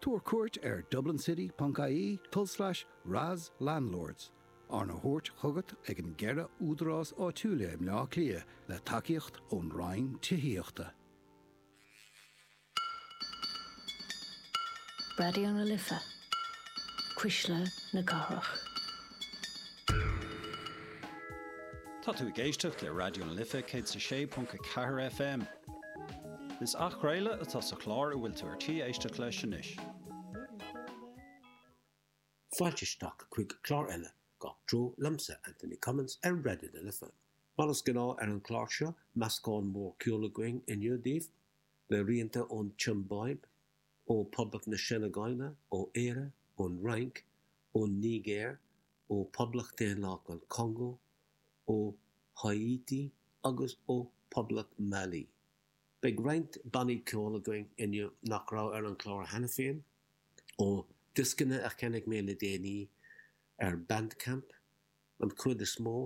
Tabhair cuairt ar dublincity.ie tulslais RAS Landlords, arna thabhairt chugat ag an gceithre údarás áitiúil i mBleá Cliath le tacaíocht ón Roinn Tithíochta. Raidió na Life, Cuisle na Cathrach. Tá tú ag éisteacht le Raidió na Life 106.4 FM. Is athchraoladh atá sa chlár a bhfuil tú ar tí éisteacht leis anois. Fáilte isteach chuig clár eile Gach Treo liomsa, Anthony Cummins, ar Raidió na Life. Mar is gnáth ar an chlár seo, meascán mór ceoil againn inniu daoibh, le rianta ón tSiombáib, ó Phoblacht na Seineagáile, ó Éire, ón Fhrainc, ón Nigéir, ó Phoblacht Dhaonlathach an Chongó, ó Háítí agus ó Phoblacht Mhailí. Beidh roinnt bannaí ceoil againn inniu nach raibh ar an chlár cheana féin, ó dhioscanna a cheannaigh mé le déanaí ar Bandcamp, an chuid is mó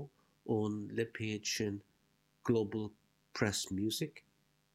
ón lipéad sin Global Press Music.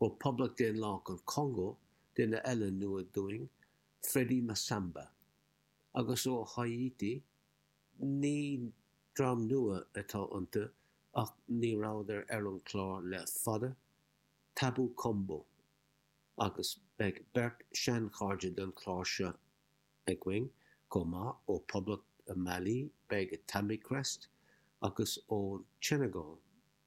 ó Poblacht Daonlathach an Chongó, duine eile nua dúinn, Freddy Massamba, agus ó Háítí, ní dream nua atá iontu ach ní rabhadar ar an chlár le fada, Tabou Combo, agus beidh beirt sheanchairde don chlár seo againn chomh maith, ó Poblacht Mailí beidh Tamikrest agus ón tSeineagáil,